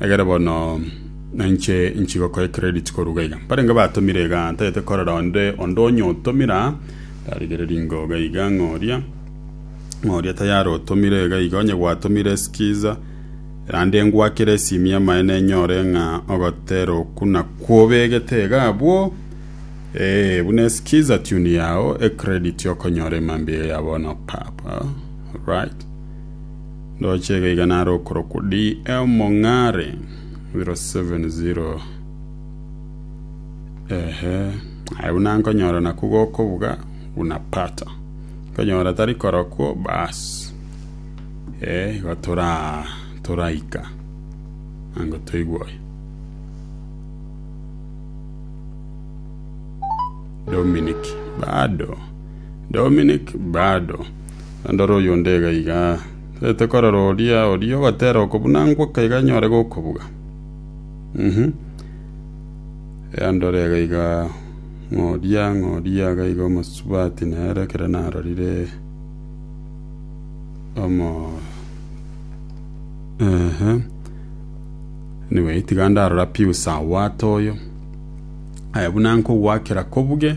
Egere bono nainche inche gokoe credit koruga iga. Mbarenge batomire iga ntagete korora onde onde onyotomira ndarigereria ngoga iga ng'a oria ng'a oria tayari otomire iga iga onye gwatomire skiza erande ngwakere esimi amaene nyore ng'a ogotera oku nakwo obegete iga abwo eh buna eskiza tune yao e credit okonyora emambia ya bono papa right Ndoche iga iga nare okorokwa D. M. Mong'are 070 Ehe, aye buna nkonyora nakwo gokobuga unapata. Nkonyora tari korokwo baas. Eh, igo tora toraika. Ango toigwoye. Dominic bado Dominik, Bado, naende ore oyonde iga iga, tagete korora oria oria ogatera okobuna ngoka iga anyore gokobuga. Uhmm, ee ndore iga iga, ng'a oria, ng'a oria iga iga omosubati nere ekero narorire omo ehe, anyway tiga ndarora piusa owato oyo, aye buna nkogwakera kobuge.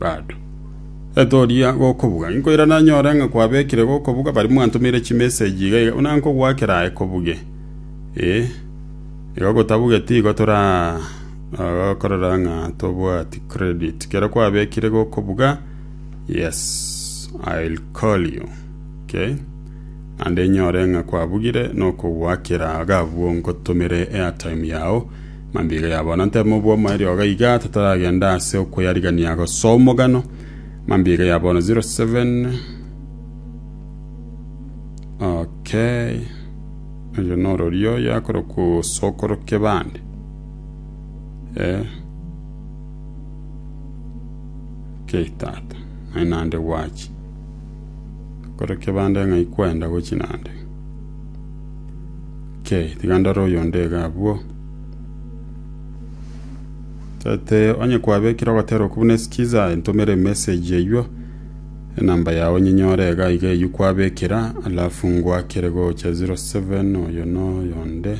Bado, etoria gokobuga, inkoirana nyore ng'a kwabekire gokobuga baria mwantomeire chimeseji iga iga, buna nkogoakera aye kobuge. Ee, iga gotabugeti igo torakorera ng'a tobwati credit. Kero kwabekire gokobuga, yes, I'll call you. Okay? Naende nyore ng'a kwabugire, nokogoakera iga abwo ngotomere airtime yao. Mambia ya bono ntebe mobwomo erioga iga totaragenda ase okoyarigania gosoa omogano. Mambia ya bono 07 Okay. Oyo norori oyo akoroka osokoroke bande. Eh. Okay tata. Ai nande gwachi. Koroke bande ng'ai kwenda gochi nande. Okay, tiga ndore oyo onde iga abwo. Tete onye kwabekire ogotera okwo buna sikiza ntomere message eywo enamba yao nyinyore iga iga eywo kwabekera alafu ngwakere gocha 07 oyo no yonde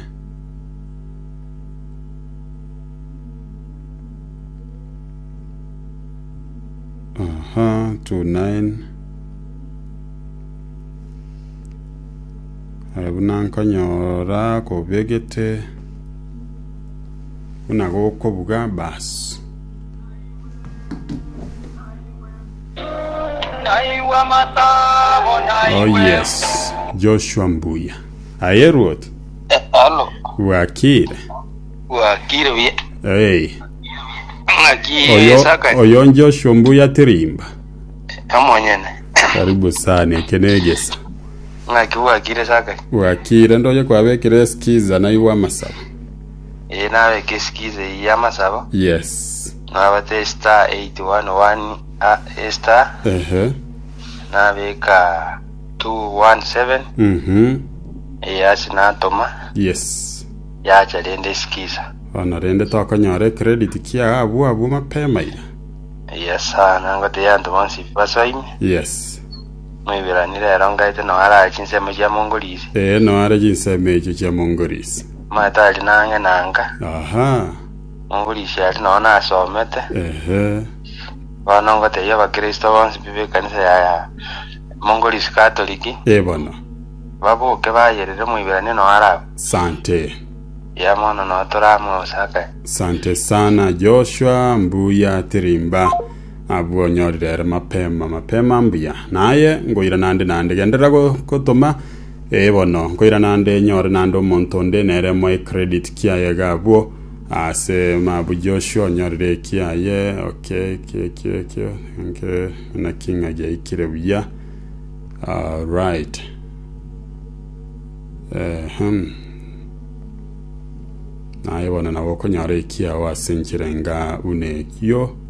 aha 29 Aye buna nkonyora kobegete buna gokobuga baasi. Oh yes, Joshua Mbuya. Aye Ruoth, Halo, bwakire. wakire buya. Hey, Ng'aki oyo, esaka oyo Joshua Mbuya Tirimba. omonyene. Karibu sana, eke negesa. Ng'aki bwakire ase akare? Bwakire, ndoche kwabekire eskiza naigwe amasabo. Ee, nabeke eskiza eyio y'amasabo. Yes. Nabate star eight one one a- e star. Ehe. Nabeka two one seven. Mhm. Ee, ase natoma. Yes. Yacha rende eskiza. Bono rende tokonyora ecredit kia abwo abwo mapema iga. Yes, sir. Nangote yanto bonsi basoime. Yes. Moiberanire ere ongaete nonya arare chinsemo chia mongorisi. Ee, nonya are chinsemo echio chia mongorisi. Omanyete aria nang'e nanka. Aha. Mongorisi aria nonya nasomete. Ehe. Bono ngotebia Abakristo bonsi b'ekanisa ya mongorisi Katoliki. Ee bono. Baboke bayerere Moiberania nonya arabe. Sante. Eya mono nonya torame gose akae. Sante sana Joshua, mbuya tirimba. Abwo onyorire ere mapema, mapema mbuya. Na aye ngoira naende naende, genderera gotoma, ee bono, ngoira naende enyore naende omonto onde nere moe credit kiaye iga abwo, aase mabu Joshua onyorire eki aye, okay, ekio ekio ekio, thank you, naki ng'a giaikire buya, alright, ehem, naye bono nabo okonyora ekiao ase enchera enga buna eyio.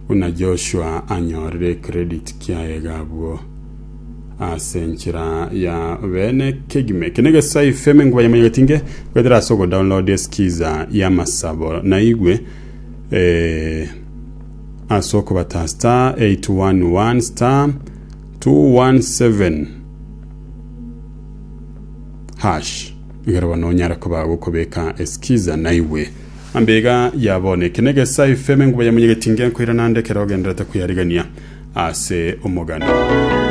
Buna Joshua anyorire credit kiaye iga abwo ase enchera ya bene kegima eke negesai fm enkuba ya manyagetinge gwetera ase ogodownload eskiza ya masabo naigwe eh, ase okobata star 811 star 217 hash Ekero bono onyare koba agokobeka eskiza naigwe. Ambe iga ya bono, eke negesaa efemo enguba ya monyegetinga enkoira naende ekero ogendererete koyarigania ase omogano.